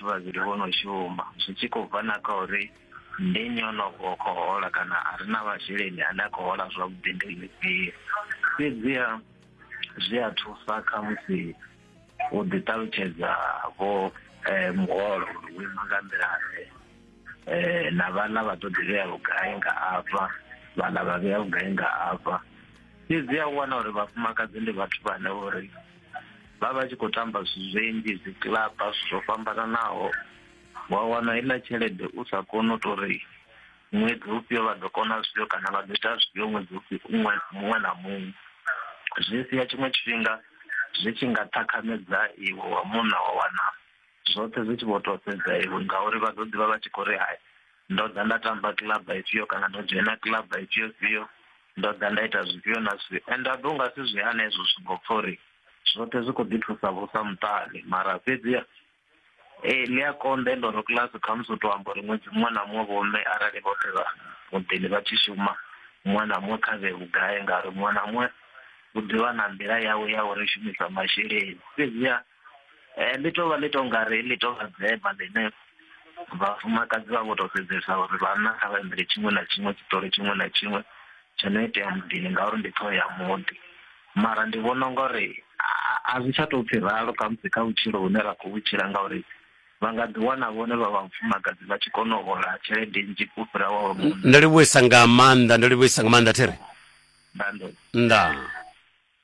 Vhavhili vho no shuma zwi tshi khou bva na kha uri ndi nnyi o no vho khou hola kana a re na masheleni ane a khou hola zwavhuḓi ndi ḽifhio. Fhedziha zwi a thusa kha musi u ḓi ṱalutshedza vho muholo uri wo ima nga nḓila-ḓe na vhaḽa vha ḓo ḓi vhea vhugai nga afha, vhaḽa vha vhea vhugai nga afha. Fhedziha u wana uri vhafumakadzi ndi vhathu vhane vho ri vha vha tshi khou tamba zwithu zwinzhi dzi kilaba zwithu zwo fhambananaho wa wana iḽa tshelede u sa koni u tou ri ṅwedzi ufhio vha ḓo kona zwifhio kana vha ḓo ita zwifhio ṅwedzi ufhio muṅwe na muṅwe zwi sia tshiṅwe tshifhinga zwi tshi nga ṱhakhamedza iwe wa munna wa wana zwoṱhe zwi tshi vho to sedza iwe ngauri vha ḓo ḓivha vha tshi khou ri hai ndo ḓa nda tamba club ifhio kana ndo dzhena club ifhio fhio ndo ḓa nda ita zwifhio na zwifhio and a ḓo nga si zwi hana hezwo zwingo pfa uri zwoṱhe zwi khou ḓi thusa vhusa muṱani mara fhedzi ee ḽi a konḓa ende ro kiḽasi khamusi u tou amba uri ṅwedzi muṅwe na muṅwe vhomme arali vhoṱhe vha muḓini vha tshi shuma muṅwe na muṅwe kha vhe vhugai ngauri muṅwe na muṅwe u ḓivha na nḓila yawe ya uri shumisa masheleni fhedziha Eh, ḽi tovha ḽi to ngari ḽi tovha dzema ḽine vhafumakadzi vha vho to sedzesa uri vhanna kha vha imbele tshiṅwe na tshiṅwe tshiṱori tshiṅwe na tshiṅwe tsho no itea muḓini ngauri ndi ṱhoho ya muḓi mara ndi vhona unga uri a- a zwi tsha tou pfhi ralo khamusi kha vhutshilo hune ra khou vhutshila ngauri vha nga ḓi wana vhone vha vhafumakadzi vha tshi kona u hola tshelede nnzhi u fhira wa wa munna ndo livhuisa nga maanḓa ndo livhuisa nga maanḓa thiri nda ndo nda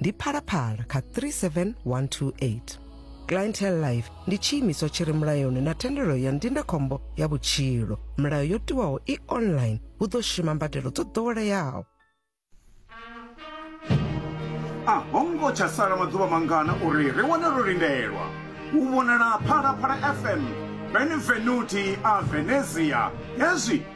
ndi phalaphala kha 37128 clientele life ndi tshiimiswa tshi re mulayoni na thendelo ya ndindakhombo ya vhutshilo milayo yo tiwaho i online hu ḓo shuma mbadelo dzo ḓoweleaho a ho ngo tsha sala maḓuvha mangana uri ri wane ro lindelwa u vhonala phalaphala fm benvenuti a venezia hezwi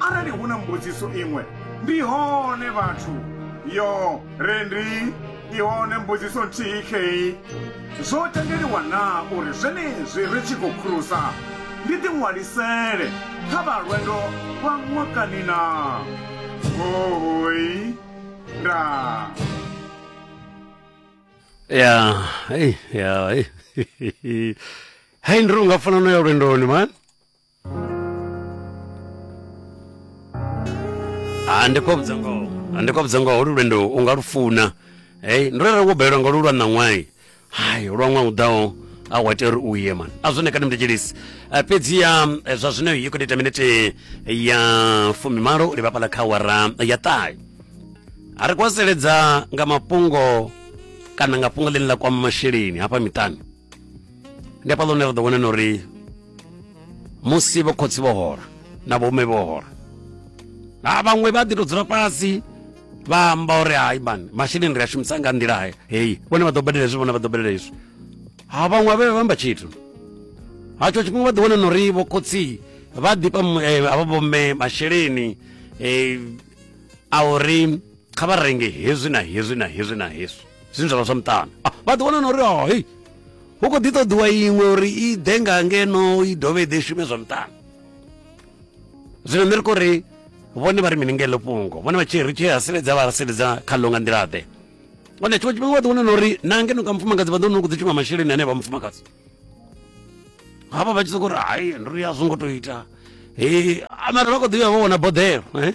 Arali hu na mbudziso iṅwe, ndi hone vhathu. Yo, Rendi, i hone mbudziso nthihi khei. Zwo tendeliwa na uri zwenezwi ri tshi khou khurusa, ndi ḓi ṅwalisele kha vha lwendo lwa ṅwakani na? Hoi. Nda. Ya, hey, ya, hey. Hey, ndi runga fana no ya lwendoni, man. Ah, ndi khou vhudza ngoho Ah, ndi khou vhudza ngoho holu lwendo u nga lu funa hey, ndo rere wo balelwa nga lu lwa ṋaṅwai hai lwa ṅwaha u ḓaho a wa tea uri u ye man a zwone kani mndetshilisi Ah, fhedziha eh, zwa zwino i khou ita minete ya fumimalo u livha fhaḽa kha wara ya ṱahe a ri kwaseledza nga mafhungo kana nga fhungo ḽine ḽa kwama masheleni hafha miṱani ndi hafhaḽa hune ra ḓo vhona na uri musi vho khotsi vho hola na vhome vho hola ha vhaṅwe vha ḓi to dzula fhasi vha amba uri hai mani masheleni ri a shumisa nga nḓila heyi vhone vha ḓo badela hezwi vhone vha ḓo badela hezwi ha vhaṅwe vha vhe vha amba tshithu hatsho tshifhinga vha ḓi wana na uri vho khotsi vha ḓifha eh, avha vhomme masheleni eh, a uri kha vha renge hezwi na hezwi na hezwi na hezwi zwine zwa vha zwa muṱana ah, vha ḓiwana na uri o oh, hei hu khou ḓi ṱoḓiwa iṅwe uri i ḓe nga ngeno i dovhe i ḓe shume zwa muṱana zwino nṋe ri khou ri vhone vha ri mini ngelo fhungo vhone vha tshi ri tshi haseledza vha haseledza kha ḽo nga nḓila-ḓe one tshiṅwe tshifhinga vha ḓiwana na uri na ngeno nga mufumakadzi vha ḓo no kudzi tshiṅwe masheleni ane vha mufumakadzi havha vha tshi soko uri hai ndo ri a zwo ngo to ita he mara vha kho ḓi vha vho vhona boḓelo eh?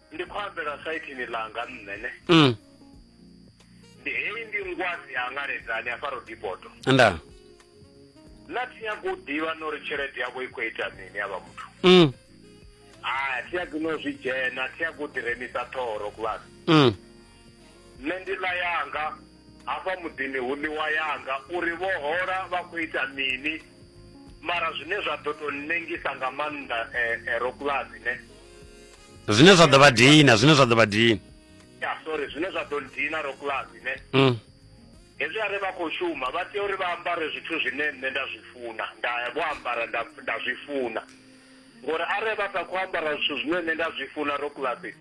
ndi khou ambela saithini ḽanga nṋe ne mm. ndi heyi ndi ngwazi ya ngaledzani a faro dipoto nda na thi nyako u ḓivha no ri tshelede yavho i khou ita mini ya vha muthu mm. a thi nyako no zwi dzhena thi nyako u ḓiremisa ṱhoho ro kuvhana mm. nṋe ndi ḽa yanga hafha muḓini hu ḽiwa yanga uri vho hola vha khou ita mini mara zwine zwa ḓo tou nnengisa nga maanḓa um eh, eh, ro kuvhazine zwine zwa ḓo vha dina zwine zwa ḓo vha dina ya sorry zwine zwa ḓo dina ro kulasi ne mm. hezwi are vha khou shuma vha tea uri vha ambare zwithu zwine nṋe nda zwi funa nda vho ambara nda zwi funa ngori are vha sa khou ambara zwithu zwine nṋe nda zwi funa ro kulasi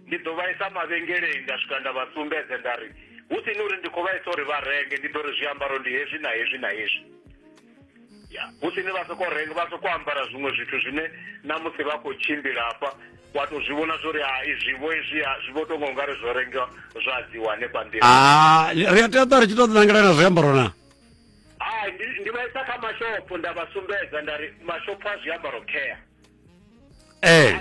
ndi ḓo vha isa mavhengeleni nda swika nda vha sumbedze nda ri hu si ni uri ndi khou vha isa uri vha renge ndi ḓo ri zwiambaro ndi hezwi na hezwi na hezwi ya husini vha soko renga vha soko ambara zwiṅwe zwithu zwine na musi vha khou tshimbila hafha wa to zwi vhona zwori ha izwivo izwi ha zwi vho tonga ungari zwo renga zwa dziwa hanefha nḓila ah, ri a tea ṱwa ri tshi to ḓinangela na zwiambaro na hai ndi vha isa kha mashopho nda vha sumbedza nda ri mashopho a zwiambaro care ee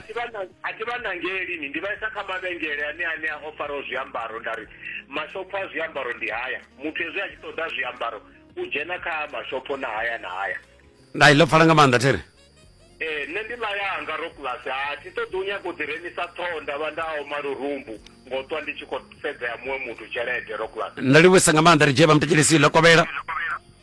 a thi vha nangeli ni ndi vhaisa kha mavhengele ane ane a ofaraho zwiambaro nda ri mashopho a zwiambaro ndi haya muthu hezwi a tshi ṱoḓa zwiambaro u dzhena kha mashopho na haya na haya nda i ḽo pfala nga maanḓa thene ee nṋe ndi ḽa yanga ro kulasi a thi ṱoḓi u nyaka u ḓi remisa ṱhoho nda vha nda oma lurumbu ngo ṱwa ndi tshi khou sedzea muṅwe muthu tshelede ro kulasi nda livhuisa nga maanḓa ri dzhie vha mutekelesi ḽo kovhela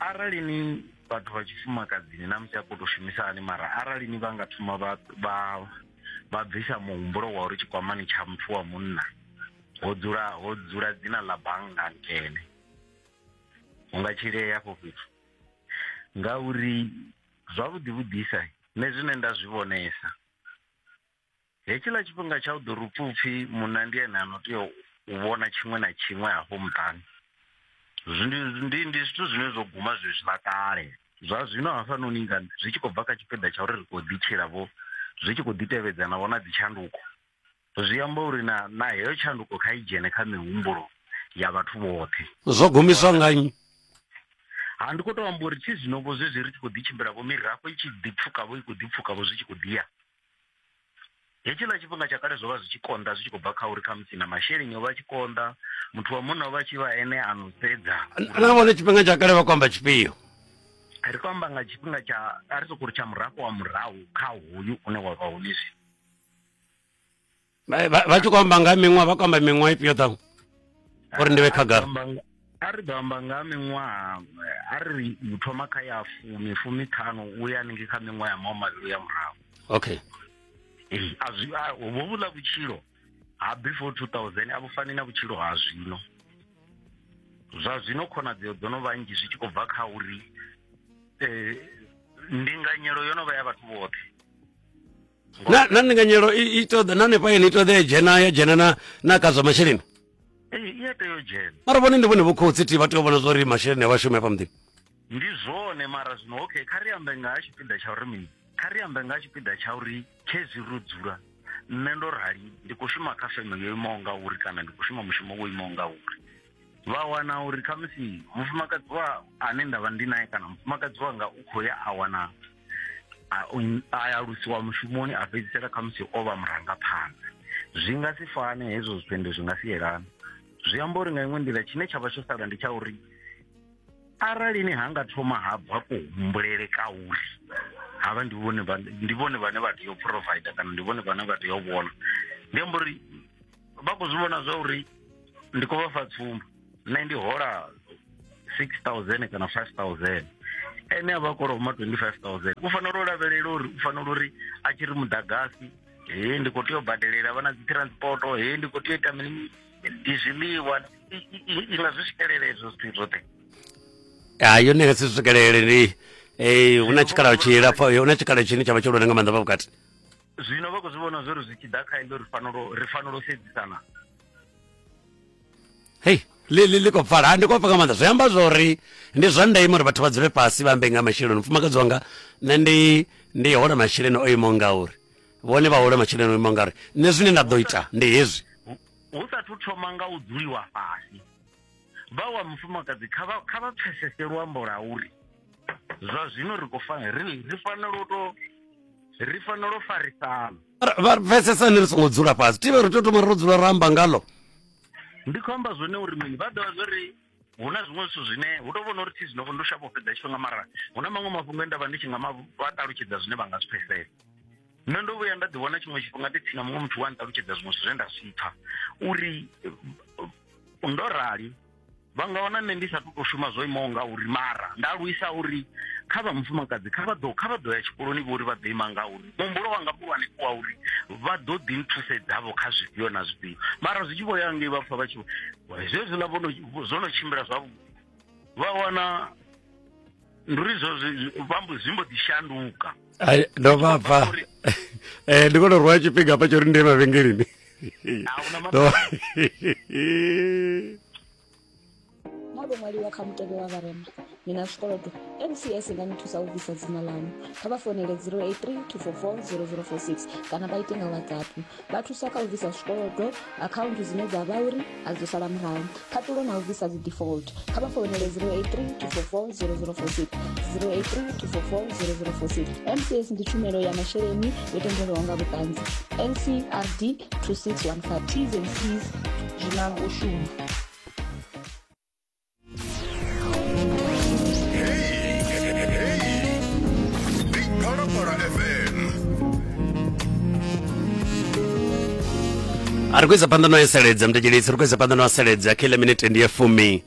arali ni vhathu vha tshifumakadzini na musi a khou tou shumisa hani mara arali ni vha nga thoma vha vha vha bvisa muhumbulo wa uri tshikwamani tsha muthu wa munna ho dzula ho dzula dzina ḽa bannga nkene hu nga tshilea afho fhethu ngauri zwavhuḓi vhuḓisa nṋe zwine nda zwi vhonesa hetshiḽa tshifhinga tsha u ḓo ri pfupfi munna ndi ene ano tea u vhona tshiṅwe na tshiṅwe hafho muṱani ndi ndi zwithu zwine zwo guma zwezwiḽa kale zwa zwino hafhanoni nga zwi tshi khou bva kha tshipiḓa tsha uri ri khou ḓitshila vho zwi tshi khou ḓi tevhedza na vhona dzitshanduko zwi amba uri na na heyo tshanduko kha i dzhene kha mihumbulo ya vhathu vhoṱhe zwo gumiswa nga nnyi ha ndi khou tou amba uri thi zwino vho zwezwi ri tshi khou ḓi tshimbila vho mirafho i tshi ḓi pfukavho i khou ḓi pfukavho zwi tshi khou ḓiya hetshiḽa tshifhinga tsha kale zwo vha zwi tshi konḓa zwi tshi khou bva kha uri khamusi na masheleni o vha tshi konḓa muthu wa munna o vha tshi vha ene a no sedza nahone tshifhinga tsha kale vha khou amba tshifhio ri khou amba nga tshifhinga tsha a ri sokou ri tsha murafho wa murahu kha hoyu une wa vha hone zwino Vha- vha vha tshi khou amba nga ha miṅwaha vha khou amba miṅwaha ifhio ṱhaṅwe uri ndi vhe khagala a ri ḓo amba nga ha miṅwaha a ri u thoma kha ya fumi fumi ṱhanu u ya haningei kha miṅwaha ya maho mavhili ya murahu okay Ee, a zwi a- hovho vhuḽa vhutshilo ha before 2000 a vhu fani na vhutshilo ha zwino zwa zwino khonadzeo dzo no vha nnzhi zwi tshi khou bva kha uri eh, ndinganyelo yo no vha ya vhathu vhoṱhe na na ndinganyelo i i ṱoḓa na hanefha yeni i ṱoḓa ya dzhena ya dzhena na na ka zwa masheleni Ee, i a tea u dzhena mara vhone ndi vhone vho khotsi ti vha tea u vhona zwa uri masheleni a vhashumi hafha muḓini ndi zwone mara zwino okay kha ri ambe nga ha tshipiḓa tsha uri mini kha ri ambe nga ha tshipiḓa tsha uri khezwi ro dzula nṋe ndo rali ndi khou shuma kha feme yo imaho nga uri kana ndi khou shuma mushumo wo imaho nga uri vha wana uri khamusi mufumakadzi wa ane nda vha ndi naye kana mufumakadzi wanga u khou ya a wana a alusiwa mushumoni a fhedzisela kha musi o vha murangaphanḓa zwi nga si fane hezwo zwitendo zwi nga si yelana zwi amba uri nga iṅwe nḓila tshine tsha vha tsho sala ndi tsha uri arali ni ha nga thoma ha bva kuhumbulele ka uri havha ndi vhone ndi vhone vhane vha tea u provider kana ndi vhone vhane vha tea u vhona ndi amba uri vha khou zwi vhona zwa uri ndi khou vha fa tsumbo nṋe ndi hola six thousand kana five thousand ene a vha a koloma twenty five thousand u fanela u lavhelela uri u fanela uri a tshi ri muḓagasi he ndi khou tea u badelela vha na dzi transporto he ndi khou tea u ita mini ndi zwiḽiwa i- i- i- i nga zwi swikelela ezwo zwithu zwoṱhe ha yone nga si swikelele ndi eh, hu na tshikhala tshilapfa hu na tshikhala tshine tshavha tshihulwane nga maanḓa fha vhukati zwino vha khou zwi vhona zwori zwi tshi ḓa kha iḽo ri fanelo ri fanela u sedzisana hei ḽi ḽi ḽi khou pfala ha ndi khou pfa nga maanḓa zwi amba zwori ndi zwa ndeme uri vhathu vha dzule fhasi vha ambe nga masheleni mufumakadzi wanga nṋe ndi ndi hola masheleni o imaho ngauri vhone vha hola masheleni o imaho ngauri nṋe zwine nda ḓo ita ndi hezwi hu sathu thoma nga u dzuliwa fhasi vha wa mufumakadzi kha vha kha vha pfesese luambo la uri zwa zwino ri khou fanela ri ri fanela u to ri fanela u farisana vha pfesesani ri songo dzula fhasi tivhe ri tea thoma ro dzula ramba ngalo ndi khou amba zwone uri mini vha ḓivha zwo ri hu na zwiṅwe zwithu zwine hu tou vhona uri thi zwino ndo shavha u fhedza tshifhinga mara hu na maṅwe mafhungo e nda vha ndi tshi nga vha ṱalutshedza zwine vha nga zwi pfesesa nṋe ndo vhuya nda ḓiwana tshiṅwe tshifhinga ndi tsina muṅwe muthu wa nṱalutshedza zwiṅwe zwithu zwe nda zwi pfha uri ndo rali vha nga wana nṋe ndi sa tou shuma zwo imaho nga uri mara nda luisa uri kha vha mufumakadzi kha vha ḓo kha vha ḓo ya tshikoloni vho uri vha ḓo ima nga uri muhumbulo wanga muhulwane ku wa uri vha ḓo ḓi nthusedzavho kha zwifhio na zwifhio mara zwi tshi vho ya ngei vha pfa vha tshi zwezwiḽa vho no zwo no tshimbila zwavhuḓi vha wana ndi uri zwo vhambo zwi mbo ḓi shanduka ndo vha bva eh ndi kone rwa tshifhinga pa tsho ri ndi mavhengeleni mabo mwaliwa kha mutevhe wa vharema ni na zwikolodo mcs nga ni thusa u bvisa dzina ḽaṋu kha vha fonele 083 244 0046 kana vha ite nga whatsapp Vha thusa kha u bvisa zwikolodo, akhaunthu dzine dza vha uri a dzo sala murahu, khaṱulo na u bvisa dzi default. Kha vha founele 083 244 0046 083 244 0046. MCS ndi tshumelo ya masheleni yo tendelwaho nga vhuṱanzi. NCRD 2615 T's and C's zwi na u shuma. ari kuedza phanḓa no eseledza mudetshedzi ri kuedza phanḓa no aseledza kha ile minete ndi ya fumi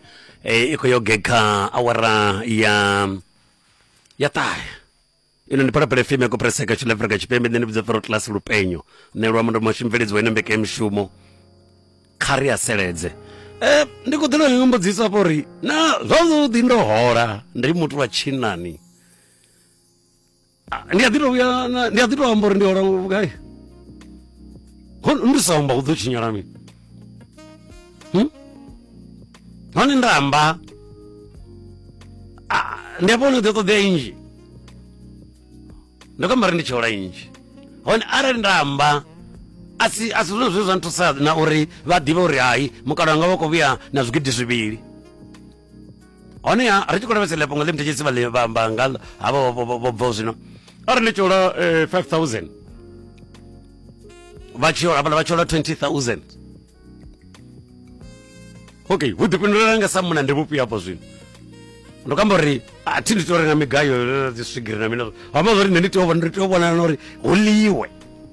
e, i khou yo gekha awara ya ya ṱahe ino ndi phalaphala fm ya kopreseka tshine afrika tshipembe nṋe ndi vhidza fero class lupenyo nṋe lwa mundo mashu mveledzo ine mbeke mishumo kha ri aseledze eh ndi khou ḓela nga mbudziso afho uri na zwavhuḓi ndo hola ndi muthu wa tshinani Ah, ndi a ḓi tou vhuya na- ndi a ḓi tou amba uri ndi hola vhugai Ho- ndi sa amba hu ḓo tshinyala mini hmm? hone nda amba ah, ndi afho hone ḓi ṱoḓea inzhi ndo kamba ri ndi tsheola inzhi hone arali nda amba a si a si zwone zwine zwa nthusa na uri vha ḓivhe uri hai mukalaho nga vha khou vhuya na zwigidi zwivhili honeha ri tshi khou lavhesa lepo nga ḽi muthetshesi vhamba nga havha vho bvaho zwino a ri ndi tshola 5000 eh, vha tshola vhala vha tshola 20000 okay hu ḓifhindulelana nga sa muna ndi vhufhio hafho zwino ndo kamba uri a thi ndi tea uri nga migayo dzi swigiri na mina amba zwa uri nṋe ndi tea u vhona uri hu ḽiwe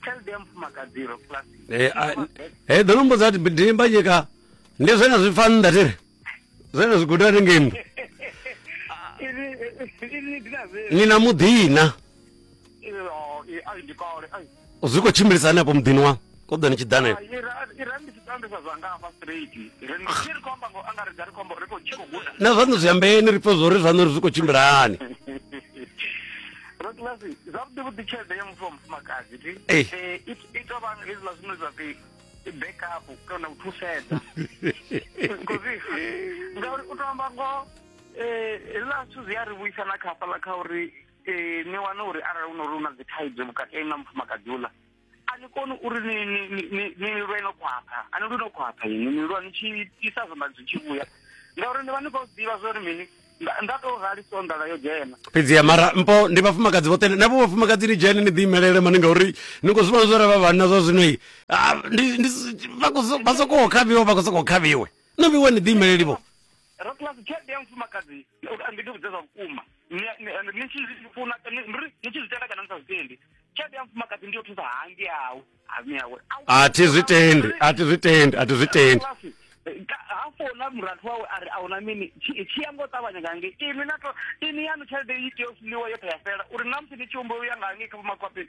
tshelede ya mufumakadzi ro eh, ah, eh, ḓo nombo dza ndimba nyika ndi zwena zwi pfa nnḓa tiri zwena zwi guda ni ngemu ni na muḓina zwi khou tshimbilisa hani apo muḓini wa ko ḓa ni tshi ḓanela na zwaṋu zwi ambeeni ri pfe zwo ri zwaṋu ri zwi khou tshimbila hani rabulasi zwavhuḓi vhuḓi tshelede ya muthu wa mufumakadzi ti eh. eh, i to vha hezwiḽa zwine zwa pfi backup kana u thusedza kozi ngauri u to amba ngoho eh, hezwiḽa zwithu zwi a ri vhuisa na khafhaḽa kha uri ni wane uri arali u no ri u na dzi thaidzo vhukati na mufumakadzi uḽa a ni koni uri ni lwe no khwaṱha a ni lwi no khwaṱha ini ni lwa ni tshi isa zwanḓa zwi tshi vhuya ngauri ni vha ni khou ḓivha zwa uri mini nda to rali so ndala yo dzhena fhedzi ya mara mpo ndi vhafumakadzi vhoṱhe na vho vhafumakadzi ni dzhene ni ḓi imelele mani ngauri ni khou zwivhona zwore vha vhanna zwa zwino i vha sokou khavhiwa vha khou sokou khavhiwe no vhiwe ni ḓi imeleli vho rakulasi tshelede ya mufumakadzi ndi ndi vhudze zwa vhukuma Ni- ni- and ni tshi zwi funa ni ri- ni tshi zwi tenda kana ni sa zwi tendi tshelede ya mufumakadzi ndi yo thusa hangi yawe hami yawe Au- a thi zwi tendi a thi zwi tendi a thi zwi tendi Rakulasi, eh, ka- ha fona murathu wawe a ri a huna mini tshi tshi ya ngo ṱavhanya nga ngei ini na to ini yanu tshelede i tea u funiwa yo tea fela uri na musi ni tshi humbula u ya nga ngei kha vhomakhwapeni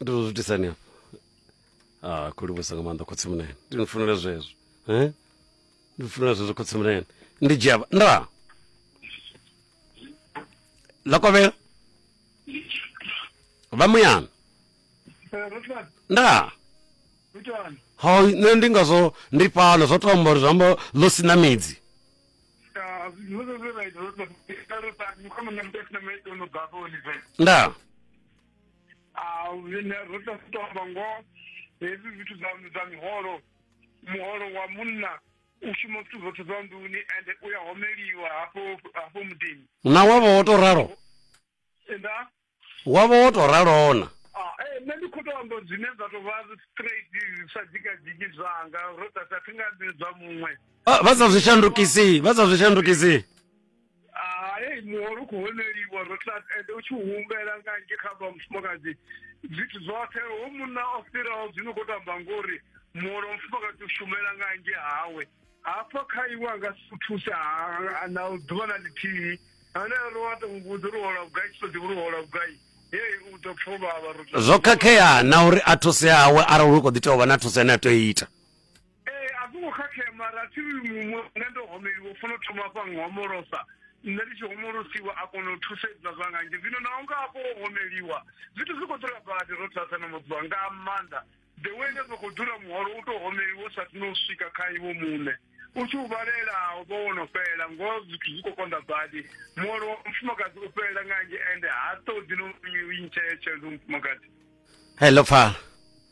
ndi zwo zwitisani hafha a ah, khou livhusa nga maanḓa khotsi munene ndi ni funela zwezwo eh? ndi funela zwezwo khotsi munene ndi dzhia nda ḽa kovhela vha muyana nda ha nṋe ndi ngazwo ndi fhano zwo tomba uri zwiamba ḽo sina midzi nda a zwine ro tea u tou amba ngoho hezwi zwithu zwa zwa miholo muholo wa munna u shuma zwithu zwoṱhe zwa nḓuni ende u ya homeliwa hafho hafho muḓini na wavha wo to ralo nda wavha wo to ralona Ah, eh, nṋe ndi khou tou amba zwine zwa tou vha straight zwi sa dzikadziki zwanga ro ḓa sa thi nga zwi zwa muṅwe Ah, vha sa zwi shandukisi vha sa zwi shandukisi hai muholo u khou honeliwa ro tla ende u tshi humbela nga nge kha vha mufumakadzi zwithu zwoṱhe ho munna o fhiraho zwino khou tamba ngori muholo wa mufumakadzi u shumela nga nge hawe hafha kha iwe a nga si u thuse na ḓuvha na ḽithihi ane ro wa to muvhudza uri hola vhugai tshi to ḓivha uri hola vhugai zwo khakhea na uri a thuse hawe arali hu kho ḓi tea u vha na thuso ine a tea u ita ee a zwo ngo khakhea mara thi muṅwe nṋe ndo homeliwa funa u thoma fha nghomolosa nṋe ndi tshi homolosiwa a kona u thusedza zwa nga nzhi zwino naho nga afho o homeliwa zwithu zwi khou dzula badi ro thasa na mudziwa nga maanḓa the way nda soko dzula muholo u to homeliwa sa tino swika kha iwo muṋe u tshi u vhalela u vha wono fhela ngoho zwithu zwi khou konḓa badi muholo wa mufumakadzi u fhelela nga nzhi ende ha ṱoḓi no u ntsheya tshelede mufumakadzi hello pfala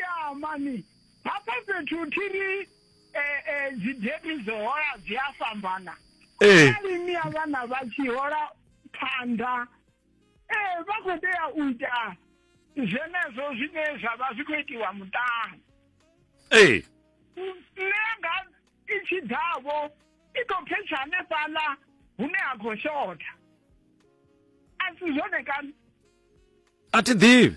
ya mani hafha fhethu thi ri eh, eh, dzideti dzo hola dzi a fhambana ee arali ni ya vhana vha tshi hola phanḓa ee vha khou tea u ita zwenezwo zwine zwa vha zwi khou itiwa muṱani ee nṋe nga i tshi ḓavho i tou phetsha hanefhaḽa hune ha khou shotha a si zwone kana a thi ḓivhi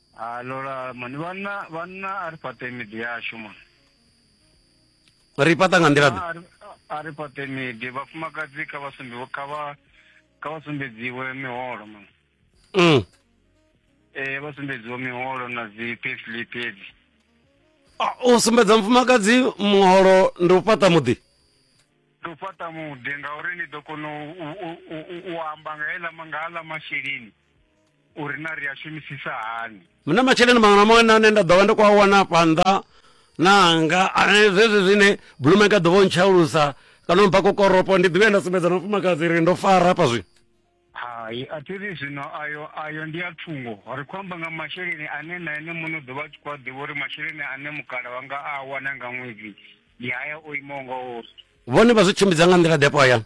ha lola mani vhanna vhanna a ri fhaṱe miḓi yashu mani ri fhaṱa nga nḓila ḓe a ri fhaṱe miḓi vhafumakadzi kha vha sumbiwe kha vha kha vha sumbedziwe miholo mani mm. ee vha sumbedziwe miholo na dzi payslip edzi u sumbedza mufumakadzi muholo ndi u fhaṱa muḓi ndi u fhaṱa muḓi ngauri ni ḓo kona u amba nga heḽa nga aḽa masheleni uri na ri a shumisisa hani mna masheleni maṅwe na maṅwe nane nda ḓovha ndi khou a wana fhanḓa nanga zwezwi zwine blumenka ḓovha o ntshaulusa kana mpha kokoropo ndi ḓivhe nda sumbedza na mufumakadzi ri ndo fara hafha zwino hai a thi ri zwino ayo ayo ndi a thungo ri khou amba nga masheleni ane na ene muno ḓo vha tshi khou a ḓivha uri masheleni ane mukala wanga a wana nga ṅwedzi ndi haya o imaho nga uri vhone vha zwi tshimbidza nga nḓila ḓepo hayani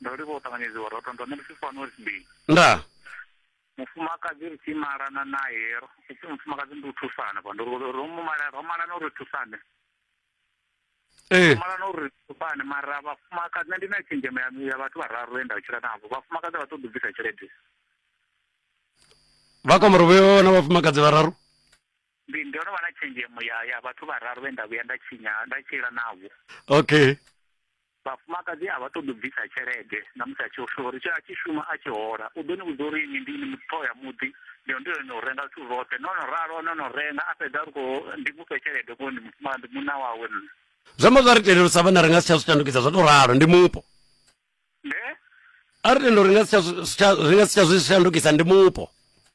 Ndo livha u ṱanganyedziwa roṱo ndo ṋemusi fano ri sibili. Nda. Mufumakadzi ri tshi malana naye ro ipfi mufumakadzi ndi u thusana vha ndo ro mu mala ro malana uri thusane. Eh. Malana uri thusane mara vhafumakadzi nṋe ndi na tshenzhemo ya ya vhathu vhararu enda u tshila navho. Vhafumakadzi vha ṱoḓa u bvisa tshelede. Vha kwamara vho na vhafumakadzi vhararu. ndi ndo no vha na tshenzhemo ya ya vhathu vhararu vhe nda vhuya nda tshinya nda tshila navho okay vhafumakadzi a vha ṱoḓi u bvisa tshelede na musi a tshi shuma uri a tshi shuma a tshi hola u ḓo ni vhudza uri ni ndi ni mutho ya muḓi ndi ndi no renga zwithu zwoṱhe no no ralo no no renga a fhedza ri khou ndi mufhe tshelede ko ndi mufumaka ndi munna wawe nṋe zwi amba zwa ri tendela u sa vha na ri nga si tsha zwi shandukisa zwa tou ralo ndi mupo ne a ri tendela uri nga si tsha zwi- si tsha- ri nga si tsha zwi shandukisa ndi mupo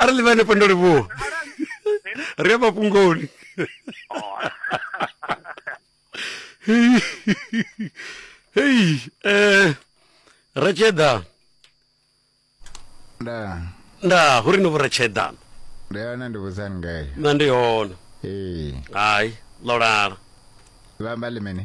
arali vha hanefho ndo livhuwa ri a mafhungoni oh. hei hei eh ratsheda nda nda hu ri no vho ratsheda ndi hone ndi vhudzani ngayo na ndi hone ee hai ḽo lala vha amba ḽi mini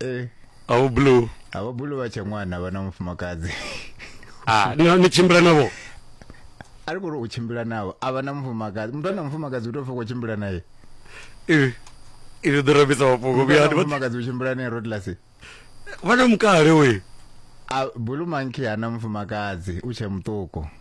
Eh, a vho blue a vha bulu vha tshe ṅwana vha na mufumakadzi ah ni ni tshimbila navho a ri kuri u tshimbila navho a vha na mufumakadzi muthu ana mufumakadzi u tou pfa u khou tshimbila naye ivi ivi ḓo rabisa mafhungo Muthu vhuya ana mufumakadzi u tshimbila naye rodlasi vha na mukale we a bulu monkey ana mufumakadzi u tshe muṱuku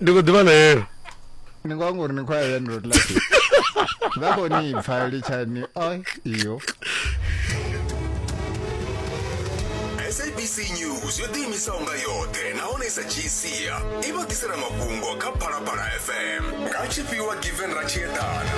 ndi khou ḓivha ḽeelo ni ngo anga uri ni khou ya ya ndilo tlasi vha khou ni pfa litshani oi iyo sabc news yo ḓiimisaho nga yoṱhe nahone sa gcia i vha ḓisela mafhungo kha phalaphala fm nga tshifhiwa given ratshieḓana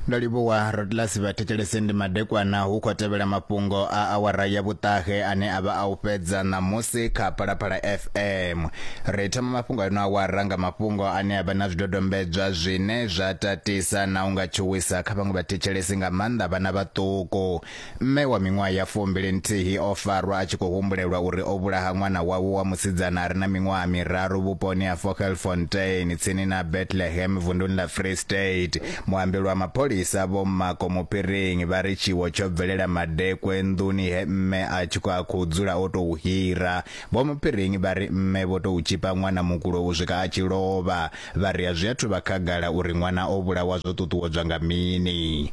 Ndo livhuwa Rodlas Vhathetshelesi ndi madekwana hu khou tevhela mafhungo a awara ya vhuṱahe ane a vha a u fhedza ṋamusi kha Phalaphala FM. Ri thoma mafhungo a ino awara nga mafhungo ane a vha na zwidodombedzwa zwine zwa tatisa na u nga tshuwisa kha vhaṅwe vhathetshelesi nga maanḓa vhana vhaṱuku. Mme wa miṅwaha ya fumbili nthihi o farwa a tshi khou humbulelwa uri o vhulaha ṅwana wawe wa musidzana a re na miṅwaha miraru vhuponi ha Vogelfontein tsini na Bethlehem vunduni ḽa Free State. Muambeli wa mapholisa Vho Mmako Muphiringi vha ri tshiwo tsho bvelela madekwe nḓuni he mme a tshi khou a khou dzula o tou hira. Vho Muphiringi vha ri mme vho tou tshipa ṅwana mukulo u swika a tshi lovha. Vha ri a zwi athu vha khagala uri ṅwana o vhulawa zwo ṱuṱuwedzwa nga mini.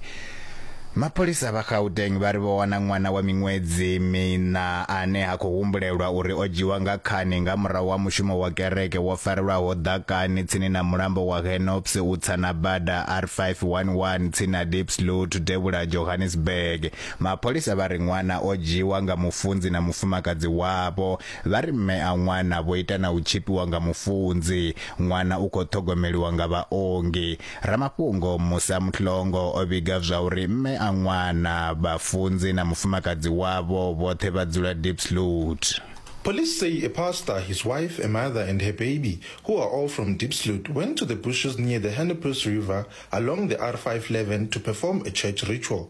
Mapholisa vha Gauteng vha ri vho wana ṅwana wa miṅwedzi miṋa ane ha khou humbulelwa uri o dzhiwa nga khani nga murahu ha mushumo wa kereke wo farelwaho ḓakani tsini na mulambo wa Henops u tsa na bada R511 tsini na Diepsloot devhula ha Johannesburg. Mapholisa vha ri ṅwana o dzhiwa nga mufunzi na mufumakadzi wavho Vha ri mme a ṅwana vho ita na u tshifhiwa nga mufunzi. Ṅwana u khou ṱhogomeliwa nga vhaongi. Ramafhungo Musa Mhlongo o vhiga zwa uri mme a ṅwana, vhafunzi na mufumakadzi wavho vhoṱhe vha dzula Diepsloot. Police say a pastor, his wife, a mother and her baby, who are all from Diepsloot, went to the bushes near the Hennepuis River along the R5 Leven to perform a church ritual.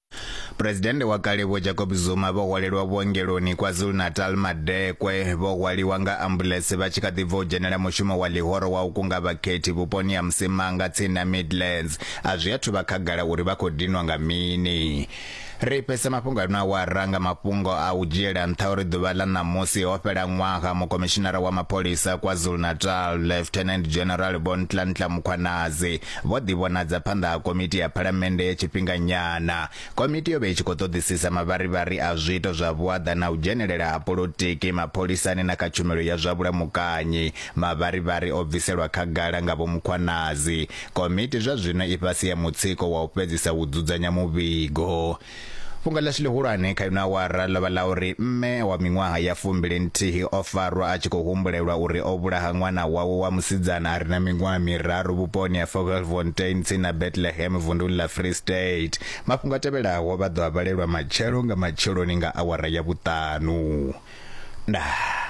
Presidennde wa kale Vho Jacob Zuma vho hwalelwa vhuongeloni KwaZulu-Natal madekwe vho hwaliwa nga ambuḽese vha tshi kha ḓi bva u dzhenela mushumo wa ḽihoro wa u kunga vhakhethi vhuponi ha Msimanga tsini na Midlands. A zwi athu vha khagala uri vha khou dinwa nga mini. Ri fhedzisa mafhungo ano awara nga mafhungo a u dzhiela nṱha uri ḓuvha ḽa ṋamusi ho fhela ṅwaha mukomishinara wa mapholisa KwaZulu-Natal Lieutenant General Vho Ntlantla Mukhwanazi Vho ḓivhonadza phanḓa ha Komiti ya Phalamennde ya Tshifhinganyana. Komiti yo vha i tshi khou ṱoḓisisa mavharivhari a zwiito zwa vhuaḓa na u dzhenelela ha polotiki mapholisani na kha tshumelo ya zwa vhulamukanyi. Mavharivhari o bviselwa khagala nga Vho Mukhwanazi. Komiti zwa zwino i fhasi ha mutsiko wa u fhedzisa u dzudzanya muvhigo. Fhungo ḽashu ḽihulwane kha ino awara ḽo vha ḽa uri mme wa miṅwaha ya fumbili nthihi o farwa a tshi khou humbulelwa uri o vhulaha ṅwana wawe wa musidzana a re na miṅwaha miraru vhuponi ha Vogelfontein tsini na Bethlehem vunduni ḽa Free State. Mafhungo a tevhelaho vha ḓo a vhalelwa matshelo nga matsheloni nga awara ya vhuṱanu. Ndaa.